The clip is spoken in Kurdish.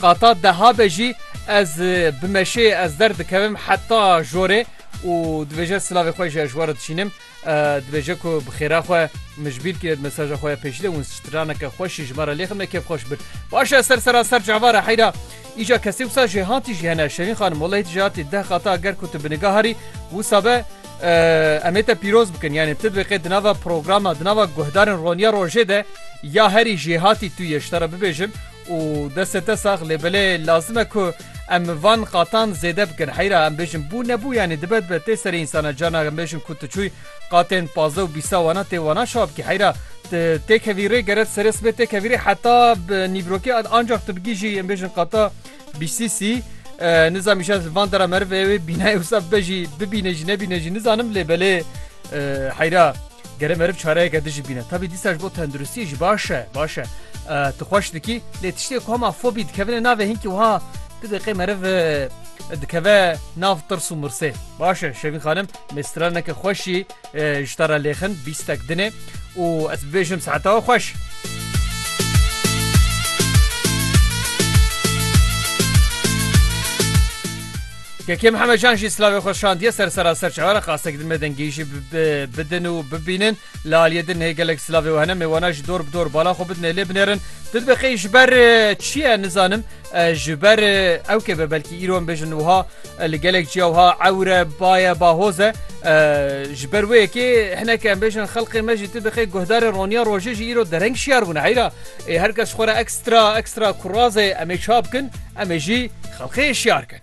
Qata deha be jî ez bi meşê ez der dikevim heta jorê û dibêje silavê xwe jî ez ji we re dişînim. Dibêje ku bi xêra xwe min ji bîr kiriye di mesaja xwe ya pêşî de winstraneke xweş jî ji me re lê ximne kêfxweş bir. Baş e ser sera ser cava re heyra. Îca kesê wisa jêhatî jî hene Şevîn xanim welehî tu jêhatî deh qata ger ku tu bi nigaha rî wisa be em ê te pîroz bikin yanê tu dibê qê di nava programa di nava guhdarên roniya rojê de ya herî jêhatî tu yê ji te re bibêjim Û destê te sax lê belê lazim e ku em van qatan zêde bikin heyra em bêjin bû nebû yanî dibe dibe tê serê însan e carna em bêjin ku tu çûy qatên pazdeh û bîsta wana tê wana şawa bikî heyra tu têkevî rê geret serê sibê têkevî rê heta bi nîbrokê ad ancak tu bigîjî em bêjin qata bîstî sî nizam îşe van dera merivê wê bînayê wisa bejî bibîne jî nebîne jî nizanim lê belê heyra Gere meriv çareyeke din jî bîne. Tabî dîsa ji bo tenduristiyê jî baş e, baş e. Tu xweş dikî, lê tiştê ku hema fobî dikevine navê hinkî wiha ti deqê meriv dikeve nav tirs û mirsê. Baş e Şevîn xanim, me straneke xweşî ji te re lêxin, bîstek dinê û ez bibêjim seheta we xweş. Kekê Mihemed Can jî silavê xwe şandiye ser sera serç Iraq asteke din me dengî jî bidin û bibînin li aliyê din hê gelek silavê û hene mêwana jî dor bi dor bala xwe bidin lê binêrin tu dibe qey ji ber çi ye nizanim ji ber ew kê be belkî îro em bêjin wiha li gelek ciya wiha ewre baye bahoze ji ber wê yekê hineke em bêjin xelqê me jî tu bi qey guhdarê roniya rojê jî îro dereng şiyar bûne heyra Ê her kes xwe re ekstra ekstra kurazê em ê çabikin, em ê jî xelkê hişyar kin.